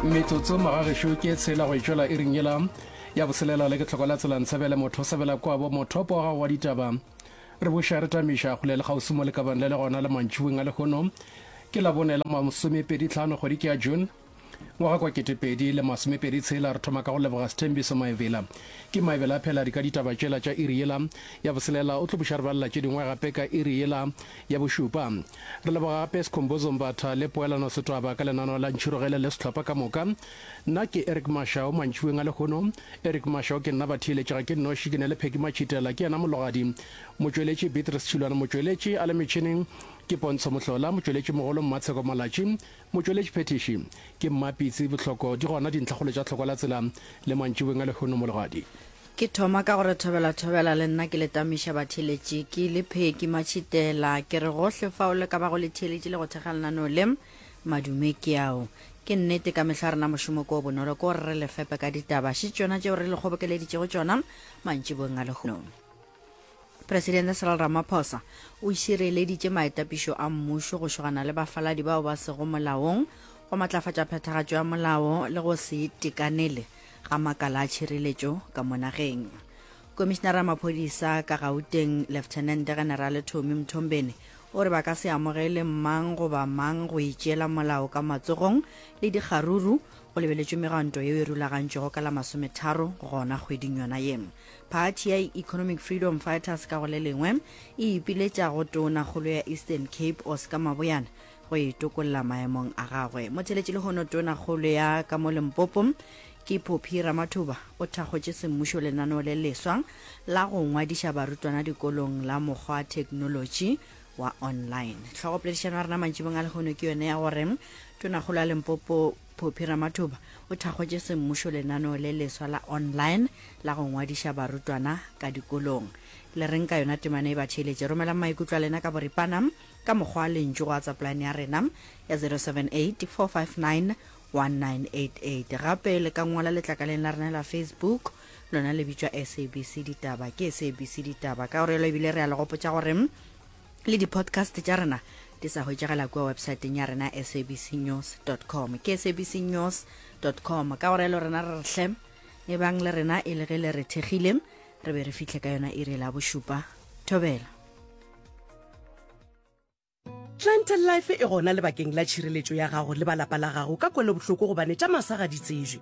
metsotso magagešo ke tshela go etšwela e ring yela ya boselela le ke tlhoko la tsela ntshebele motho sebela kwabo mothopo wa gago wa ditaba re boša re tamiša go le le gausi mo lekabang le le gona le mantšhiweng a lehono ke la bone la masomepedi tlhano kgwedi ke ya june ngwaga kwa ketepedi le masomepedi tshela re thoma ka go leboga sethembiso maebela ke maebela a phela di ka ditaba tšela tša iri yela ya boselela o tlo buša re balela tše dingwe gape ka iri yela Ya bošupa, re leboga gape Sikhumbuzo Mbatha le Poelano Setwaba ka lenaneo la Ntšhurugele le sehlopha ka moka. Nna ke Eric Mashau, mantšiboeng a lehono. Eric Mashau ke nna batheeletši, ga ke nnoši, ke ne le Peggy Matšhitela, ke yena mologadi. Motšweletši, Beatrice Tšhilwane, motšweletši a le metšhineng ke Pontsho Mohlola, motšweletši mogolo Mmatsheko Malatši, motšweletši phethiši ke Mmapitsi Bohloko. Di gona dintlhakgolo tša Tlhokwalatsela le mantšiboeng a lehono, mologadi. Ke thoma ka go re thobela-thobela le nna ke le tamiša batheeletši, ke le pheki matšhitela, ke re gohle fao le ka bago le theeletše le go thekga lenaneo le, madume ke ao. Ke nnete ka mehla rena mošomo ko o bonolo ke gore re le fepe ka ditaba, še tšona tšeo re le kgobokeleditšego tšona mantšiboweng a lehono. Presidente Cyril Ramaphosa o šireleditše maetapišo a mmušo go šogana le bafaladi bao ba sego molaong, go matlafatša phethagatšo ya molao le go se itekanele ga makala a tšhireletšo ka mo nageng. Komišinara ya maphodisa ka Gauteng, Leftenente Generale Tommy Mthombeni, o re ba ka se amogele mang goba mang go itšeela molao ka matsogong le dikgaruru, go lebeletšwe megwanto yeo e rulagantšwego ka la masometharo gona kgweding yona ye. Phathi ya Economic Freedom Fighters ka go le lengwe e ipiletša go tona kgolo ya Eastern Cape Oscar Maboyana go e tokolla maemong a gagwe. Motheletši lehono tona kgolo ya ka mo Limpopo ke Phophi Ramathuba o thakgotše semmušo lenaneo le leswa la go ngwadiša barutwana dikolong la mokgwa theknolotši wa online. Tlhogopoledišano ya rena mantšibong a lehono ke yone ya gore tonakgolo ya Limpopo Phophi Ramathuba o thakgotše semmušo lenaneo le leswa la online la go ngwadiša barutwana ka dikolong. Le reng ka yona temana e ba theeletše? Romelang maikutlo a lena ka boripana ka mokgwa wa lentšu go WhatsApp line ya rena ya 078 459 1988. Gape le ka ngwala letlakaleng la rena la Facebook lona le bitšwa SABC Ditaba. Ke SABC Ditaba ka gore yalo ebile re a le gopotša gore le di-podcast tša rena di sa hwetšagela kua websaeteng ya rena sabcnews com ke sabcnews com ka gore le rena re re hle e bang le rena e le ge le re thekgile re be re fihle ka yona iri la bošupa thobela Plantel Life e gona lebakeng la tšhireletšo ya gago le ba lapa la gago ka kwelobohloko gobane tša masa ga di tsejwe.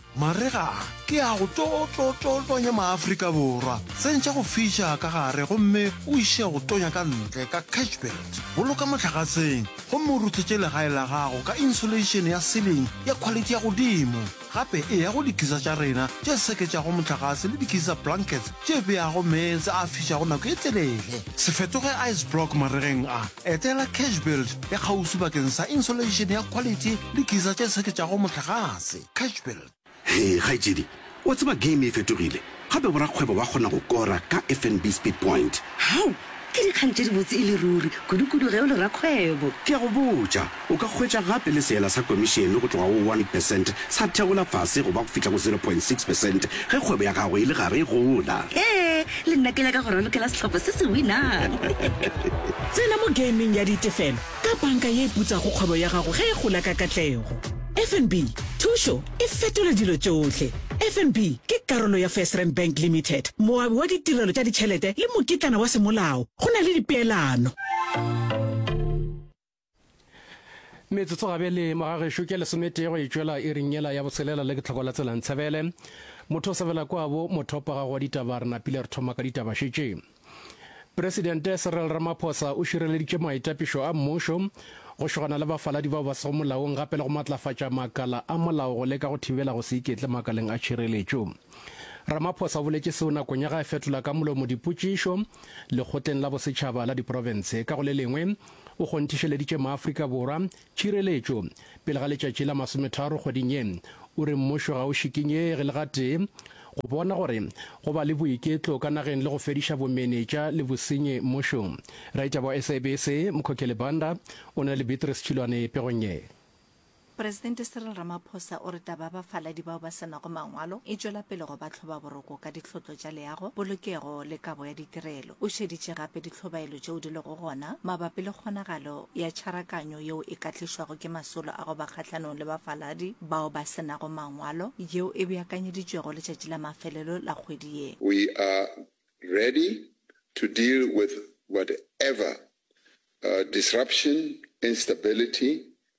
Marega a, ke a go tlo-tlo-tlo-tonya Maafrika Borwa. Tsentša go fiša ka gare gomme o iše go tonya ka ntle ka catchbelt. Boloka mohlagatseng gomme o ruthetše legae la gago ka insulation ya ceiling ya quality ya godimo. Gape eya go dikisa tša rena tše seketšago mohlagase le dikisa blankets tše beago meetse a fišago nako e telele. Se fetoge ice block maregeng a. Etela catchbelt ya kgauswi bakeng sa insulation ya quality le dikisa tše seketšago mohlagase. Catchbuild. Hee kgaetšedi, wa tseba game e fetogile, gape borakgwebo ba kgona go kora ka FNB Speed Point. Hau! Ke dikgang tše dibotse e le ruri, kudukudu ge o le rakgwebo. Ke a go botša, o ka hwetša gape le seela sa komišene go tloga go one percent sa theola fase go ba go fihla go zero point six percent ge kgwebo ya gago e le gare e gola. Hee! Le nna ke nyaka go ralokela sehlopha se se winang. Tsena mo gaming ya ditefelo ka banka ye e putsago kgwebo ya gago ge e gola ka katlego. FNB, thušo e fetola dilo tšohle. FNB ke karolo ya FirstRand Bank Limited, moabi wa ditirelo tša ditšhelete le mokitlana wa semolao go na le dipeelano. Metsotso gabjale morago gešo ke lesometee go e tšwela iring yela ya botshelela le ke tlhoko la tselang tsebele. Motho o sebela kwa bo mothopa ga go wa ditaba re napile re thoma ka ditaba šetše. Presidente Cyril Ramaphosa o šireleditše maitapišo a mmušo go šogana le bafaladi bao ba sego molaong gape le go matlafatša makala a molao go leka go thibela go se iketle makaleng a tšhireletšo. Ramaphosa o boletše seo nakong ya ga e fetola ka molomo dipotšišo lekgotleng la bosetšhaba la diprofense. Ka go le lengwe, o kgonthišeleditše maAfrika Borwa Tšhireletšo, Pele ga letšatši la masometharo kgweding ye, o re mmušo ga o šikinyege le gatee go bona gore go ba le boiketlo ka nageng le go fediša bomenetša le bosenyi mmušong. Raditaba wa SABC Mkhokheli Banda o na le Beatrice Tšhilwane pegong ye. Presidente Cyril Ramaphosa o re taba ya bafaladi bao ba se nago mangwalo e tšwela pele go ba tlhobaboroko ka ditlhotlo tša leago, polokego le kabo ya ditirelo. O šeditše gape ditlhobaelo tšeo di lego gona mabapi le kgonagalo ya tšharakanyo yeo e ka tlišwago ke masolo a go ba kgahlanong le bafaladi bao ba se nago mangwalo yeo e beakanyeditšwego letšatši la mafelelo la kgwedi ye. We are ready to deal with whatever disruption, instability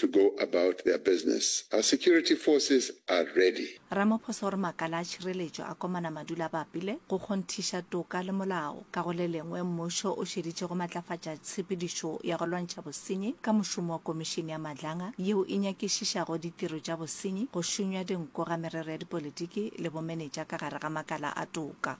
to go about their business. Our security forces are ready. Ramaphosa o re makala a tšhireletšo a komana madula a bapile go kgonthiša toka le molao. Ka go le lengwe, mmušo o šeditše go matlafatša tshepedišo ya go lwantšha bosenyi ka mošomo wa Komišene ya Madlanga yeo e nyakišišago ditiro tša bosenyi, go šunywa dinku ga merero ya dipolitiki le bomenetša ka gare ga makala a toka.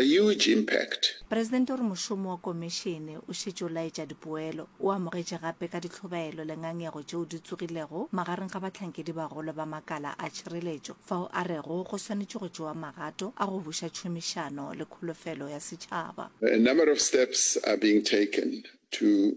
A huge impact. Presidente o re mošomo wa Komešene o šetše o laetša dipoelo. O amogetše gape ka ditlhobaelo le ngangego tšeo di tsogilego magareng ga bahlankedi-bagolo ba makala a tšhireletšo, fao a rego go swanetše go tšewa magato a go buša tšhomišano le kholofelo ya setšhaba. A number of steps are being taken to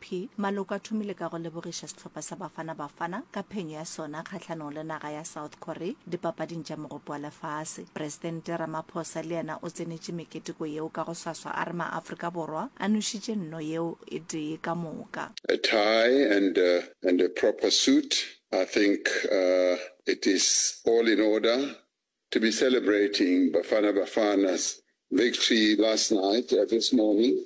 AFP, Maloko a thomile ka go lebogiša sehlopha sa Bafana Bafana ka phenyo ya sona kgahlanong le naga ya South Korea dipapading tša Mogopo wa Lefase. Presidente Ramaphosa le yena o tsenetše meketeko yeo ka go swaswa a re maAfrika Borwa a nošitše nno yeo e tee ka moka. A tie and and a proper suit, I think it is all in order to be celebrating Bafana Bafana's victory last night, this morning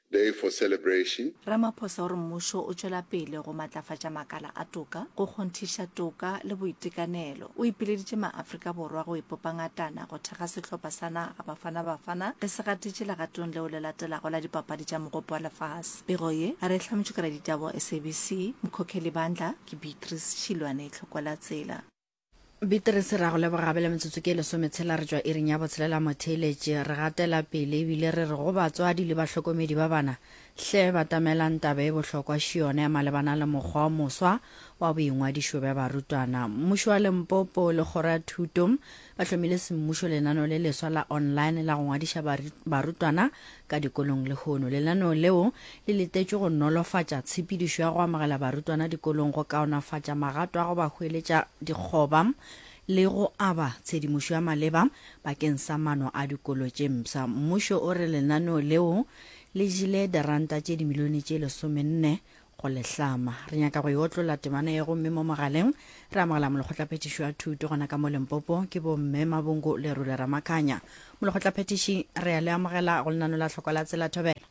Day for celebration. Ramaphosa o re mmušo o tšwela pele go matlafatša makala a toka, go kgonthiša toka le boitekanelo. O ipileditše maAfrika Borwa go ipopa ngatana go thekga sehlopha sa naga Bafana Bafana ge se gatetše legatong leo le latelago la dipapadi tša Mogopo wa Lefase. Pego ye a re e hlametšwe ke raditaba wa SABC, Mkhokheli Bandla, ke Beatrice Šilwane Tlhokwelatsela. Bitrese ra go leboga gabe le metsotso ke lesome tshela re tšwa iring ya botshelela motheeletše re gatela pele ebile re re go batswadi le bahlokomedi ba bana hle batamelang taba e bohlokwa šione malebana le mokgwa o moswa wa boingwadišo bja barutwana. Mmušo wa Limpopo le Kgoro ya Thuto ba hlomile semmušo lenano le leswa la online la go ngwadiša barutwana Ka dikolong lehono. Lenaneo leo le letetšwe go nolofatša tshepedišo ya go amogela barutwana dikolong, go kaonafatša magato a go ba hweletša dikgoba le go aba tshedimošo ya maleba bakeng sa mano a dikolo tše mpsha. Mmušo o re lenaneo leo le jele diranta tše dimilione tše lesomenne Go le hlama, re nyaka go e otlolla temana ye gomme mo mogaleng re amogela molekgotlaphethiši wa thuto gona ka mo Limpopo, ke bomme Mabungu le Rule Ramakhanya. Molekgotlaphethiši, re a le amogela go lenano la tlhoko la Tsela Thobela.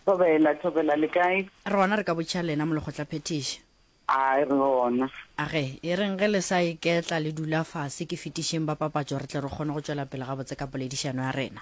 Thobela, Thobela, le kae? Re gona re ka botšiša lena, Molekgotlaphethiši. A re gona. A ge, e reng ge le sa iketla le dula fase, ke fetišeng ba papatšo re tle re kgone go tšwela pele gabotse ka poledišano ya rena.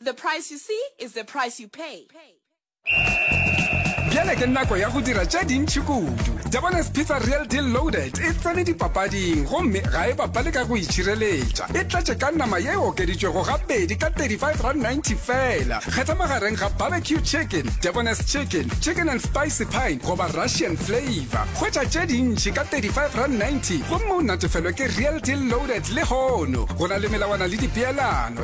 The price you see is the price you pay. Bjale ke nako ya go dira tše dintšhi kudu. Japanese Pizza Real Deal Loaded e tsene dipapading gomme ga e bapale ka go itšhireletša. E tlatše ka nama ye e okeditšwego gabedi ka 35 rand 90 fela. Kgetha magareng ga barbecue chicken, Japanese chicken, chicken and spicy pine goba Russian flavor. Hwetša tše dintšhi ka 35 rand 90 gomme o natefelwe ke Real Deal Loaded lehono. Go na le melawana le dipeelano.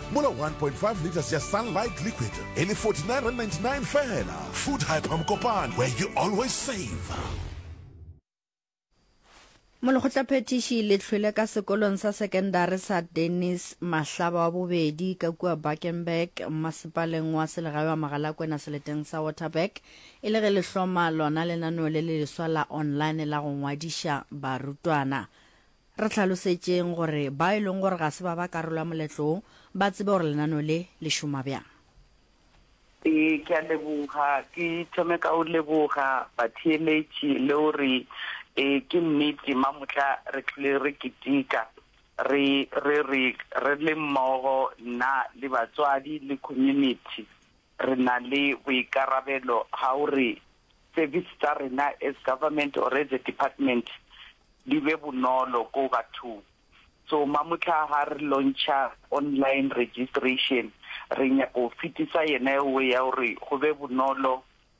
mola 1.5 liters ya sunlight liquid e le 49.99 fela food hyper mokopane where you always save molekgotlaphethiši le hlwele ka sekolong sa sekendari sa dennis mahlaba wa bobedi ka kua buckenburg mmasepaleng wa selegae wa magalakwena seleteng sa waterberg e le ge le hloma lona lenaneo le le leswa la online la go ngwadiša barutwana Re hlalosetšeng gore bao e lego gore ga se ba ba karolo ya moletlo wo ba tsebe gore lenaneo le le šoma bjang. Ee, ke a leboga. Ke thome ka go leboga batheeletši le go re ee, ke nnete mamotla re tlile re ketika re re re re le mmogo, nna le batswadi le community. re na le boikarabelo ga gore service tsa rena as government or as a department di be bonolo ko bathong. So mamotlha ga re launcha online registration re nyaka go fitisa yena ewe ya gore go be bonolo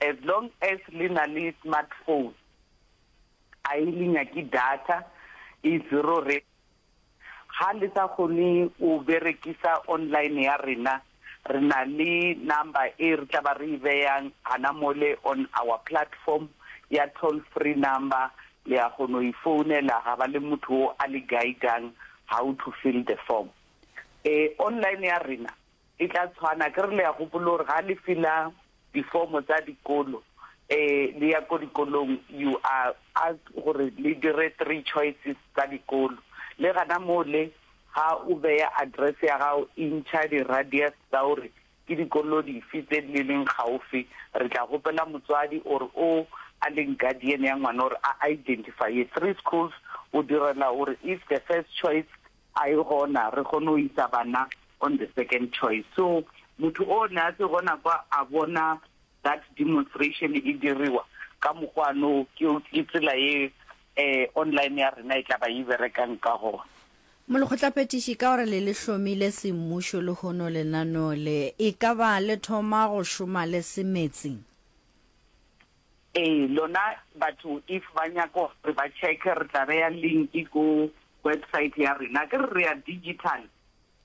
As long as le na le smartphone a e le nyake data e zero re ha le sa kgone o berekisa online ya rena re na le number e re tla ba re e beyang hana mole on our platform ya toll free number le ya kgono e founela ga ba le motho o a le guidang how to fill the form e online ya rena. E tla tshwana, akere le a gopola gore ga le fila difomo tsa dikolo, um le ya ko dikolong, you are asked gore le dire three choices tsa dikolo. Le gana moo le, ga o beya address ya gago, e ntšha di-radius tsa gore ke dikolo dife tse di le leng gaufi. Re tla kgopela motswadi or o a leng guardian ya ngwana gore a identify-e three schools, go direla gore if the first choice A e gona re kgone go isa bana on the second choice. So motho o ne a se gona kwa a bona that demonstration e diriwa ka mokgwa no ke ke tsela e eh online ya rena e tla ba e berekang ka gona. Molekgotlaphethiši, ka gore le le hlomile semmušo lehono lenaneo le, e ka ba le thoma go šoma le se meetseng? Ee, lona batho if ba nyaka gore ba check-e re tla beya link ko website ya rena. Akere re ya digital,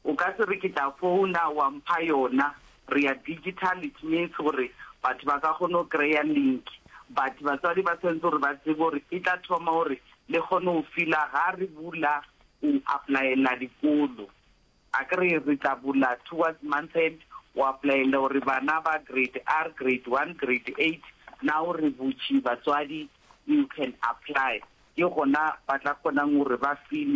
o ka se re ke tla founa wa mpha yona. Re ya digital it means gore batho ba ka kgona go kry-a link but batswadi ba tshwanetse gore ba tsebe gore e tla thoma gore le kgone go fill-a ga re bula go apply-ela dikolo. A ke re re tla bula towards month end, o applyella gore bana ba grade R, grade one, grade eight, now re butše batswadi you can apply. Ke gona ba tla kgonang gore ba filwe.